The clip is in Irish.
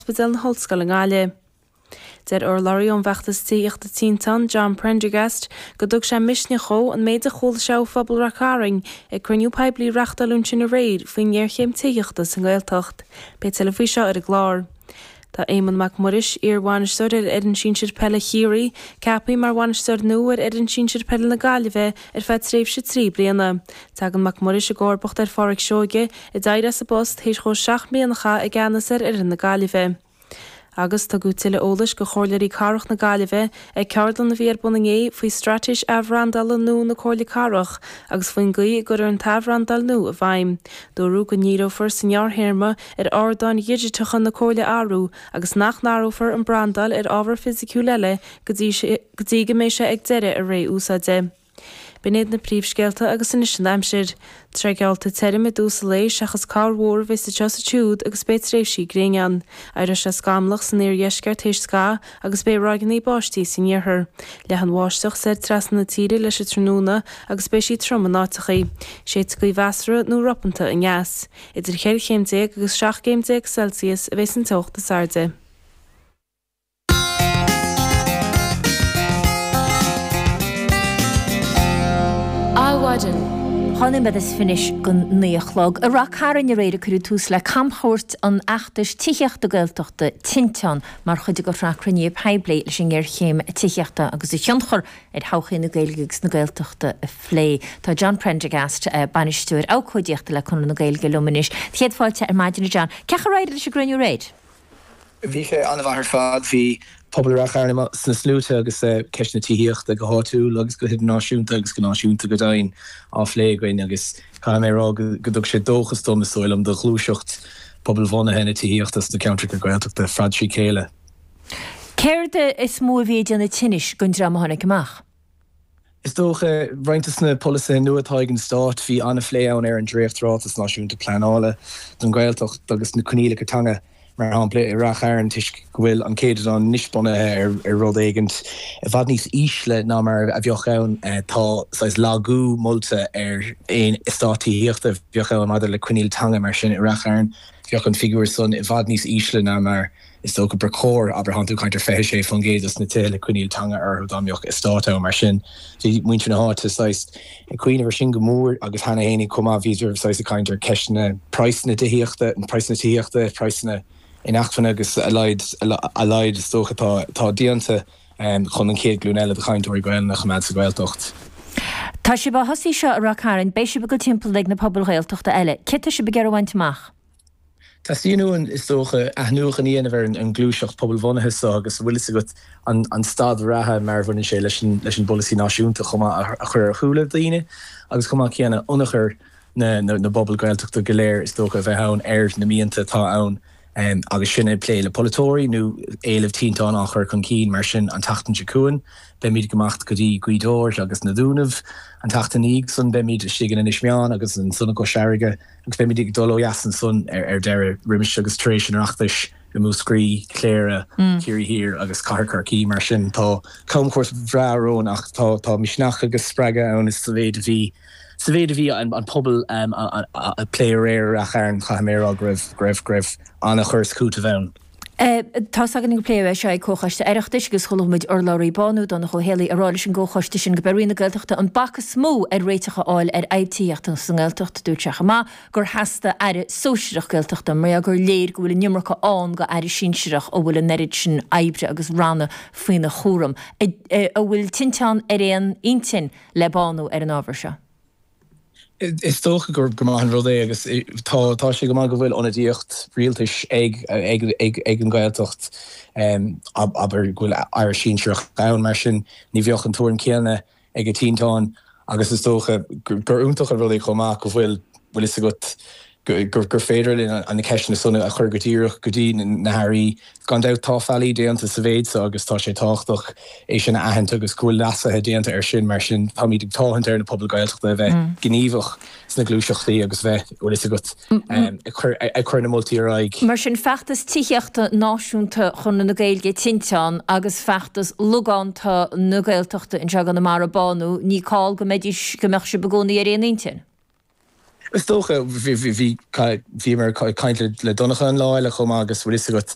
Ospidéal na hOllscoile i nGaillimh. Deir urlabhraí ón bhfeachtas tithíochta Tinteán, John Prendergast, go dtug sé misneach dhó an méid a chuala sé ó phobal Rath Cairn ag cruinniú poiblí a reáchtáladh ansin aréir faoin ngéarchéim tithíochta sa nGaeltacht. Beidh tuilleadh faoi seo ar an gclár. Tá Éamonn Mac Muiris, iar-bhainisteoir ar fhoireann sinsir peile Chiarraí, ceapthaí mar bhainisteoir nua ar fhoireann sinsir peile na Gaillimhe ar feadh tréimhse trí bliana. Tagann Mac Muiris i gcomharbacht ar Phádraic Seoige, a d'éirigh as a phost tar éis dhó seacht mbliana a chaitheamh i gceannas ar fhoireann na Gaillimhe. Agus tugadh tuilleadh eolais do Chomhairleoirí Cathrach na Gaillimhe ag ceardlann a bhí ar bun inné faoi Straitéis Athbhrandála nua na Comhairle Cathrach agus faoin gcaoi a gcuirfear an t-athbhrandáil nua i bhfeidhm. Dúradh go ndíreofar sa ngearrthéarma ar ardáin dhigiteacha na Comhairle a athrú agus nach n-athrófar an brandáil ar ábhar fisiciúil eile go dtí go mbeidh sé ag deireadh a ré úsáide. B'in iad na príomhscéalta agus anois an aimsir. Tá sé geallta tirim i dtús an lae seachas corrmhúr a bheas anseo is ansiúd agus beidh tréimhsí gréine ann. Éireoidh sé scamallach san iardheisceart théis scaitheamh agus beidh ráigeanna báistí san iarthar. Leathfaidh an bháisteach soir trasna na tíre leis an tráthnóna agus beidh sí trom in áiteachaí. Séidfidh gaoth mheasartha nó ropánta aneas. Idir cheithre chéim déag agus seacht gcéim déag Celsius a bheas an teocht is airde. Adhmhaidin. Dhá nóiméad is fiche anois don naoi a chlog. I Rath Cairn aréir a cuireadh tús le camchuairt an fheachtais tithíochta Gaeltachta, Tinteán, mar chuid de shraith cruinnithe poiblí leis an ngéarchéim tithíochta agus a thionchar ar thodhchaí na Gaeilge agus na Gaeltachta a phlé. Tá John Prendergast, Bainisteoir Abhcóidíochta le Conradh na Gaeilge liom anois. Do chéad fáilte ar maidin a John. Cén chaoi ar éirigh leis an gcruinniú aréir? Bhí sé an-mhaith ar fad. Bhí pobal Ráth Chairn sna sluaite agus ceist na tithíochta, go háitiúil agus go hidirnáisiúnta agus go náisiúnta go deimhin, á phlé againn agus caithfidh mé a rá go dtug sé dóchas dom, is dóigh liom, do ghluaiseacht pobalbhunaithe na tithíochta sna ceantracha Gaeltachta ar fad trí chéile. Céard is mó a bhí ag déanamh tinnis don dream a tháinig amach? Is dócha, roinnt dos na polasaithe nua atá ag an Stáit, bhí an-phlé ann ar an Dréacht-Ráiteas Náisiúnta Pleanála don Ghaeltacht agus na coinníollacha teanga, mar shampla, i Rath Chairn toisc go bhfuil an céadadán anois bunaithe ar rud éigint i bhfad níos ísle ná mar a bheadh ann. Tá saghas lagú molta ar aon eastát tithíochta a bheadh ann maidir le coinníoll teanga mar sin i Rath Chairn. Bheadh an figiúr san i bhfad níos ísle ná mar. Is dócha ba chóir, abair, thánn tú ag caint ar 26% dos na tithe le coinníoll teanga orthu, dá mbeadh eastát ann mar sin, bhí muintir na háite saghas ag cuimhneamh ar sin go mór agus cheana fhéinig chomh maith bhíodar saghas ag caint ar ceisteanna praghsanna tithíochta, praghsanna tithíochta, praghsanna inacmhainne agus a laghad, a laghad is dócha atá, atá déanta chun an chéad ghlúin eile de chainteoirí Gaelainne a choimeád sa Ghaeltacht. Tá sibh á thosaí seo i Rath Cairn, beidh sibh ag dul timpeall ag na pobail Ghaeltachta eile. Céard atá sibh ag iarraidh a bhaint amach? Teastaíonn uainn, is dócha, athnuachan a dhéanamh ar an ghluaiseacht pobalbhunaithe so agus an bhfuil fhios agat an staid reatha mar a bhaineann sé leis an bpolasaí náisiúnta chomh maith a chur ar shúile daoine agus chomh maith céanna ionchur na bpobal Gaeltachta go léir is dócha a bheith ann ar na mianta atá ann agus sinn ag plé le polaiteoirí nó éilimh tinteán á chur chun cinn mar sin an tseachtain seo chugainn beimid ag imeacht go dtí Gaoth Dobhair agus na Dúnaibh an tseachtain ina dhiaidh san beimid istigh in Inis Meáin agus ansan i gCois Fharraige agus beimid ag dul ó dheas ansan ar deireadh, roimis agus tar éis an Oireachtais i Múscraí, Cléire, Ciarraí Thiar agus Cathair Chorcaí. Mar sin tá camchuairt bhreá romhainn ach tá misneach agus spreagadh ann sa mhéid a bhí sa mhéid a bhí an pobal ag plé aréir i Rath Chairn, caithfidh mé a rá go raibh go raibh ana chur is cúiteamh ann. Tá's againn gur pléadh é seo ag Comhchoiste Oireachtais agus chuala muid urlabhraí Bánú, Donncha Ó hÉallaithe, ag rá leis an gComhchoiste sin gurb í Roinn na Gaeltachta an bac is mó ar réiteach a fháil ar fhadhb tithíochta sa nGaeltacht. Dúirt sé chomh maith gur theastaigh aire sóisireach Gaeltachta mar gur léir go bhfuil an iomarca ann do aire sinsireach a bhfuil an oiread sin oibre agus ranna faoina chúram. An bhfuil Tinteán ar aon intinn le Bánú ar an ábhar seo. Is dócha gur maith an rud é agus tá sé go maith go bhfuil ionadaíocht rialtais ag an Ghaeltacht, abair go bhfuil Aire Sinsearach ann mar sin ní bheadh an tuairim céanna ag Tinteán agus is dócha gur iontach an rud é chomh maith go bhfuil 'bhfuil 'fhios agat, gur féidir linn na ceisteanna san a chur go díreach go dtí na hAirí. Gan dabht tá faillí déanta sa mhéid seo agus tá sé tábhachtach é sin a aithint agus go bhfuil leasuithe déanta ar sin. Mar sin táimid ag táthant ar na pobail Gaeltachta a bheith gníomhach sna gluaiseachtaí agus bheith, bhfuil fhios agat, ag cur na moltaí ar aghaidh. Mar sin feachtas tithíochta náisiúnta Chonradh na Gaeilge, tinteán, agus feachtas logánta na Gaeltachta anseo i gConamara, bánú, ní call go mbeidís, go mbeadh sibh i gcónaí ar aon intinn. Is dócha. Bhí, bhí mé ag caint le Donncha an lá eile chomh maith agus bhfuil fhios agat,